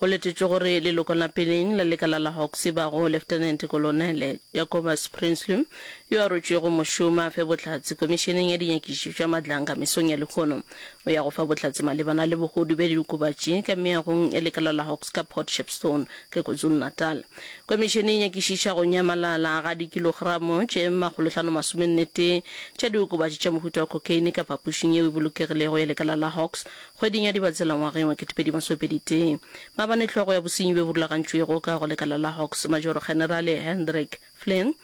Go letetšwe gore leloko la peleng la lekala la Hawks e bago Leftenente Kolonele Jacobus Prinsloo, yo a rotšwego mošomo a fe bohlatse Komišeneng ya Dinyakišišo tša Madlanga mesong ya lehono, o ya go fa bohlatse malebana le bogodu bja diokobatši ka meagong ya lekala la Hawks ka Port Shepstone le KwaZulu-Natal. Komišene e nyakišiša go nyamalala ga dikilogramo tše makgolohlano masomenne-tee tša diokobatši tša mohuta wa cocaine ka phapošing yeo e bolokegilego ya lekala la Hawks Kgweding ya Dibatsela ngwageng wa ketepedi masomepedi tee, maabane hlogo ya bosenyi bjo bo rulagantšwego ka go lekala la Hawks, Majoro-Kgenerale Hendrik Flynn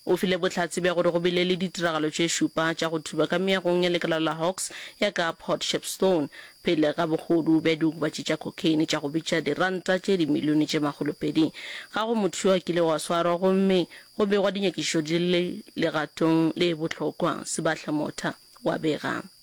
o file bohlatse bja gore go bile le ditiragalo tše šupa tša go thuba ka meagong ya lekala la Hawks ya ka Port Shepstone pele ga bogodu bja diokobatši tša cocaine tša go bitša diranta tše dimilione tše makgolopedi. Ga go motho yo a kilego a swarwa gomme go begwa dinyakišišo di le legatong le bohlokwa, Sebahla Motha wa bega.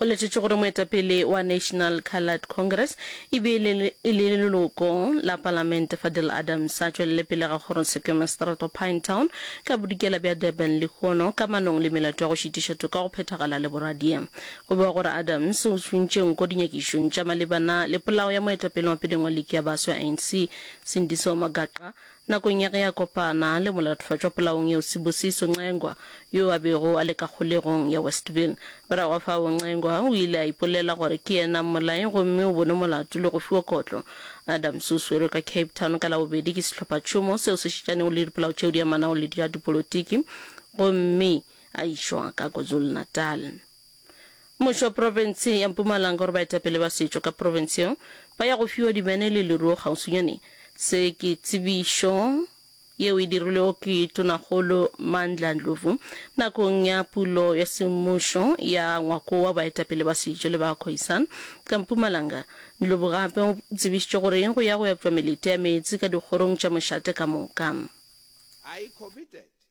Go letetšwe gore moetapele wa National Coloured Congress e be e le leloko la palamente Fadil Adams a tšwelele pele ga kgoro Sekema Strato Pinetown ka bodikela bja Durban lehono ka manong le melato ya go šitiša toka go phethagala le boradia. Go bewa gore Adams o tšhontše nko dinyakišong tša malebana le polao ya moetapele wa peleng wa liki ya baswa ya ANC Sindiso Magaqa Nakong ya ge a kopana le molaotlhotšwa polaong yeo Sibusiso Ncengwa, yo a bego a le ka kgolegong ya Westville. Morago ga fao Ncengwa o ile a ipolela gore ke yena mmolai gomme o bonwe molato le go fiwa kotlo. Adams o swerwe ka Cape Town ka Labobedi ke sehlophatšhomo seo se šitšanego le dipolao tšeo di amanago le tša dipolotiki gomme a išwa ka KwaZulu-Natal. Mmušo wa profense ya Mpumalanga o re baetapele ba setšo ka profense yeo ba ya go fiwa dimene le leruo kgauswinyane. Se ke tsebišo yeo e dirilwego ke Tonakgolo Mandla Ndlovu nakong ya pulo ya semmušo ya ngwako wa baetapele ba setšo le ba Khoisan ka Mpumalanga. Ndlovu gape o tsebišitše gore go ya go epšwa melete ya meetse ka dikgorong tša mošate ka moka. I committed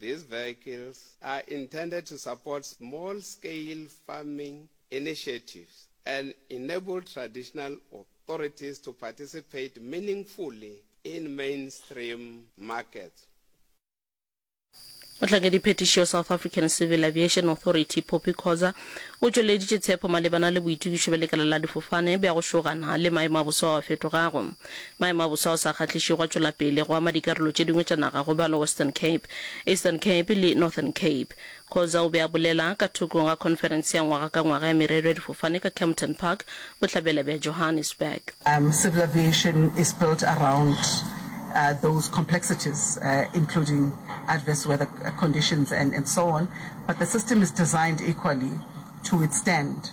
These vehicles are intended to support small scale farming initiatives and enable traditional authorities to participate meaningfully in mainstream markets. Mohlankediphetišo South African Civil Aviation Authority Poppy Khoza o tšweleditše tshepo malebana le boitokišo bja lekala la difofane bja go šogana le maemo a boso ao a fetogago. Maemo a bosa a sa kgahlišego a tšwela pele go ama dikarolo tše dingwe tša naga go ba le Western Cape, Eastern Cape le Northern Cape. Khoza o be a bolela ka thokong ga khonferense ya ngwaga ka ngwaga ya merero ya difofane ka Kempton Park, bohlabela bja Johannesburg. Civil aviation is built around those complexities including adverse weather conditions and so on, but the system is designed equally to withstand.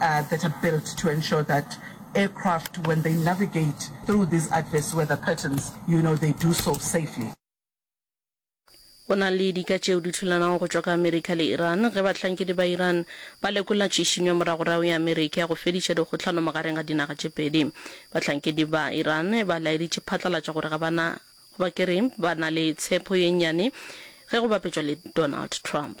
that are built to ensure that aircraft when they navigate through these adverse weather patterns you know they do so safely. Go na le dika tšeo di thulanago go tšwa ka Amerika le Iran ge bahlankedi ba Iran ba lekola tšhišinyo moragorago ya Amerika ya go fediša dikgohlano magareng ga dinaga tše pedi. Bahlankedi ba Iran ba laeditše phatlalatša gore ga ba na goba ke re ba na le tshepo ye nnyane ge go bapetšwa le Donald Trump.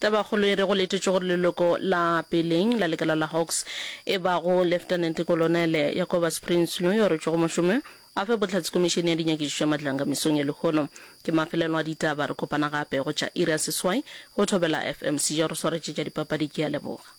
Tabakgolo e re go letetšwe gore leloko la peleng la lekala la Hawks e bago Leftenente Kolonele Jacobus Prinsloo yo a rwetšwego mošomo a fe bohlatse Komišene ya Dinyakišišo ya Matlanga mesong ya lehono. Ke mafelelo a ditaba. Re kopana gape go tša iri ya seswai go Thobela FM. Sejo a re swaretšetša dipapadi. Ke a leboga.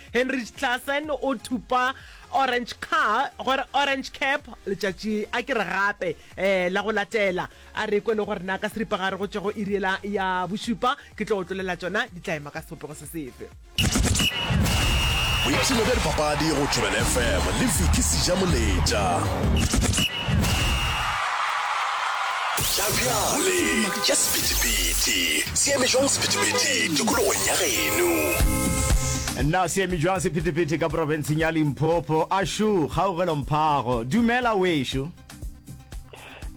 Heinrich Klaasen o thupa orange car gore orange cap letšatši a ke re gape um la go latela a re kwe le gore na ka seripa ga re go tšego iriela ya bošupa ke tlo otlolela tšona di tla ema ka sebopego se sefe boipshino bja dipapadi go thobela fm le viki seja moletša tša bjale boleng tša sephethephethe se eme jwang sephethephethe tikologong ya geno na se eme jwang sephethephethe ka porofenseng ya limpopo ashu kgaugelo mphago dumela wešo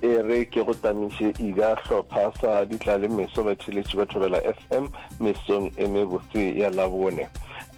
e re ke go tamiše ida hlopha sa ditlalemeso batheletši ba thobela fm mesong e mebotse ya Labone.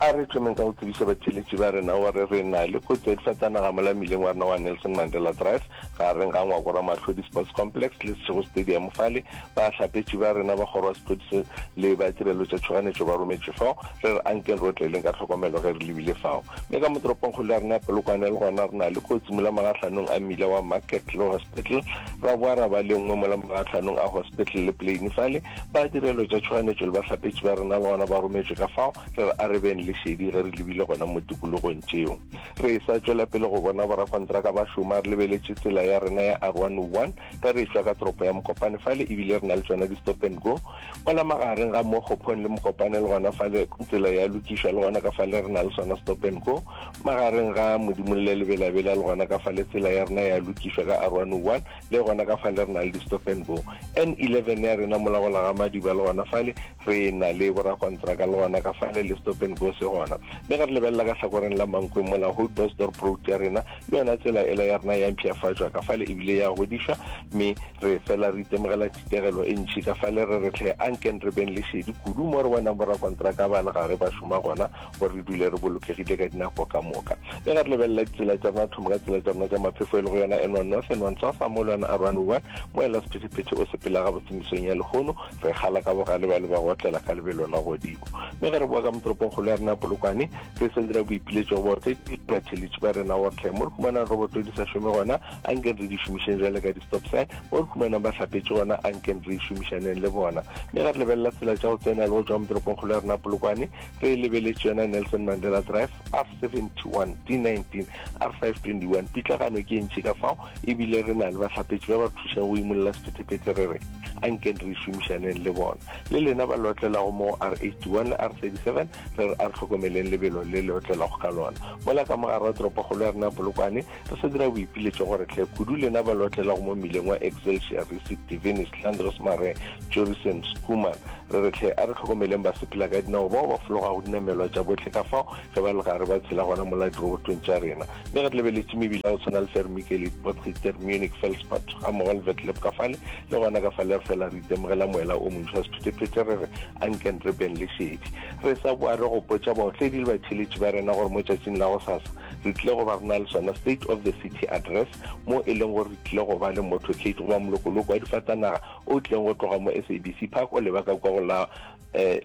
A re thomeng ka go tsebiša batheeletši ba rena gore re na le kotsi ya difatanaga mola mmileng wa rena wa Nelson Mandela Drive gareng ga Ngwako Ramahlodi Sports Complex le Seshego Stadium fale ba hlapetši ba rena ba kgoro ya sephodisa le ba tirelo tša tšhoganetšo ba rometše fao re re ankeng re otleleng ka tlhokomelo ge re lebile fao mme ka motoropongkgolo ya rena ya Polokwane le gona re na le kotsi mola magahlanong a mmila wa Market le Hospital ra boa ra ba le nngwe mola magahlanong a Hospital le Plain fale Ba direlo tša tšhoganyetšo le bahlapetši ba rena le gona ba rometšwe ka fao. Re re arebeng lešedi ge re lebile gona mo tikologong tšeo. Re e-sa tšwela pele go bona borakontraka ba šoma, re lebeletše tsela ya rena ya R101, ge re e-tšwa ka toropo ya Mokopane fale, e bile re na le tšona di-stop and go mola magareng ga mo Kgophong le Mokopane, le gona fale tsela ya lokišwa, le gona ka fale re na le sona stop and go magareng ga Modimolle le Belabela, le gona ka fale tsela ya rena ya lokišwa ka R101. le gona ka fale re na le di-stofen bo n eleven ya rena mola go laga madiba le gona fale re na le borakontraka le gona ka fale le stofen bo se gona mme ga re lebelela ka tlhakoreng la mankweng mola hope bosdorp road ya rena le yona tsela ela ya rena ya mpšhafatšwa ka fale ebile ya godišwa mme re fela re itemogela tshitegelo e ntšhi ka fale re re tlhe anken re beng lešedi kudu mo re bonang borakontraka ba le gare ba šoma gona gore re dule re bolokegile ka dinako ka moka le ga re lebelela ditsela tša rona thoma ka tsela tša rona tša maphefo e le go yona enwa north enwa ntsofa mo le yona a run wa mo ela sephetephete o sepela ga botsemisong ya lehono re gala ka bogale ba le ba gotlela ka lebelo la godimo mme ge re boa ka motoropongkgolo ya rena polokwane re sentse ra boipiletšo go baotledibatheletši ba rena wortle mo re humanang roboto di sa šome gona a nkeng re di šomišeng jale ka di-stop sign mo re humanang ba hlapetše gona a nkeng re šomišaneng le bona mme ga re lebelela tsela tša go tsena le go tšwa motoropongkgolo ya rena polokwane re lebeletše yona nelson mandela drive r 71 d 19 r 521 pitlagano ke entši ka fao ebile re na le bahlapetši ba ba thušang go imolola sephethephethe re re a nkeng re šomišaneng le bona le lena ba le otlelago mo r 81 le r 37 re re a re tlhokomeleng lebelo le le otlelago ka lona mola ka mogare wa toropokgolo ya rena polokwane Re sa dira boipiletšo gore tle kudu lena ba lotlelago mo mmileng wa Excelsior, Risic, Divinist, Landros Mare, Jorisem, Schoeman, re re tle a re tlhokomeleng basepela ka dinao bao ba fologago dinamelwa tša bohle ka fao ge ba le gare ba tshela gona mola dirobotong tša rena. Mme re lebeletše mebila ya go tshwana le Fermikelit, Botgiter, Munich, Felspert, gammogo le Vetleb ka fale le gona ka fale re fela re itemogela moela o montšhwa sephetephete re re, Anken re beng le šedi. Re sa boa re gopotša baotledi le batheeletši ba rena gore mo tšatšing la gosasa, Re tlile go ba re na le sona State of the City Address mo e leng gore re tlile go ba le motorcade goba molokoloko wa difatanaga o tlileng go tloga mo SABC Park o leba ka kwa go la um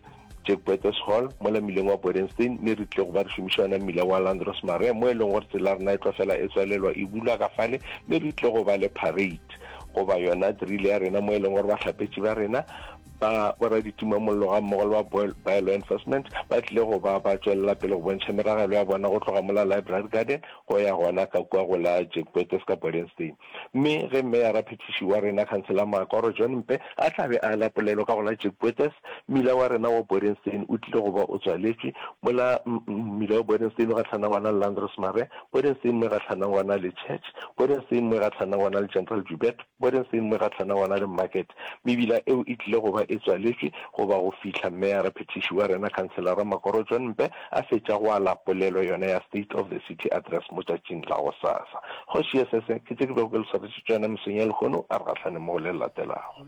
Jack Boetes Hall mo la mmileng wa Bodenstein mme re tlile go ba re šomiša yona mmila wa Landros Maria mo e leng gore tsela rena e tlo fela e tswalelwa e bulwa ka fale mme re tlile go ba le parade goba yona drill ya rena mo e leng gore bahlapetši ba rena Ba boraditumamollo gammogo le ba Boil By Law Enforcement ba tlile go ba ba tšwelela pele go bontšha meragelo ya bona go tloga mo la Library Garden go ya gona ka kua go la Jack Boetes ka Bodenstein. Mme ge Meyara Phethiši wa rena Khansela Maakoro John Mpe a tla be a ala polelo ka go la Jack Boetes, mmila wa rena wa Bodenstein o tlile go ba o tswaletšwe mo la mmila wa Bodenstein o gahlana gona le Landrosmare, Bodenstein mo e gahlana gona le Church, Bodenstein mo e gahlana gona le General Joubert. Bone se nngwe ka Tana Wanaleng Market. Mebila eo e tlile go ba e tswaletšwe goba go fihla Meyara Phethiši wa rena Khanselara Makoro John Mpe a fetša go ala polelo yona ya State of the City Address mo tšatšing la gosasa. Kgoši ye se se ke tše ke bego ke le swaretšetše tšona mesong ya lehono. A re gahlaneng mo go le le latelago.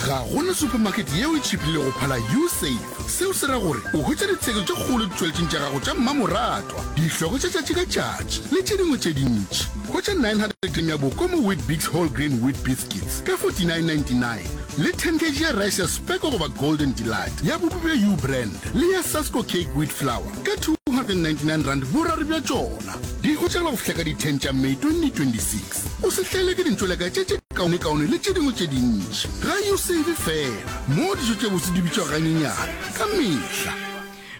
ga go na supermarket yeo e tšhipile go phala usafe seo se ra gore o hwetša ditshegetso tše kgolo ditšweletšeng tša gago tša mmamoratwa dihlogo tša tšatši ka tšatši le tše dingwe tše dintši hwetša 900 g ya boko mo wheat bigs whole grain wheat biscuits ka 4999 le 10 kg ya rice ya speko goba golden delight ya bopi bja u brand le ya sasco cake wheat flour ka 299 rand boraro bja tšona di hwetšagala go fihla ka di-10 tša may 2026 o se hlele ke dintšweleka tše tše kaonekaone le tše dingwe tše dintši. Ga yo save fela mo dijo tše botse di bitšwa ganyenyane ka mehla.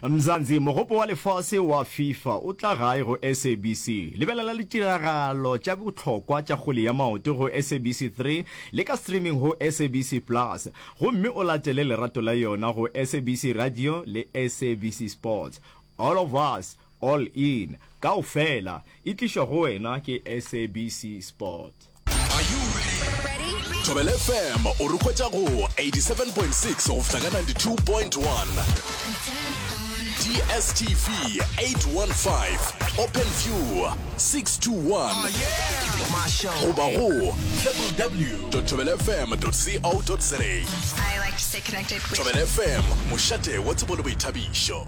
Mzansi, Mogopo wa Lefase wa Fifa o tla gae go SABC. Lebelela ditiragalo tša bohlokwa tša kgwele ya maoto go SABC 3 le ka streaming go SABC Plus, gomme o latele lerato la yona go SABC Radio le SABC Sports. All of us All In kaofela e tlišwa go wena ke SABC Sport. Are you ready? Thobela FM o re hwetša go 87.6 go fihla ka 92.1. DSTV 815, OpenView 621, goba go www.thobelafm.co.za. Thobela FM, mošate wa tsebo le boithabišo.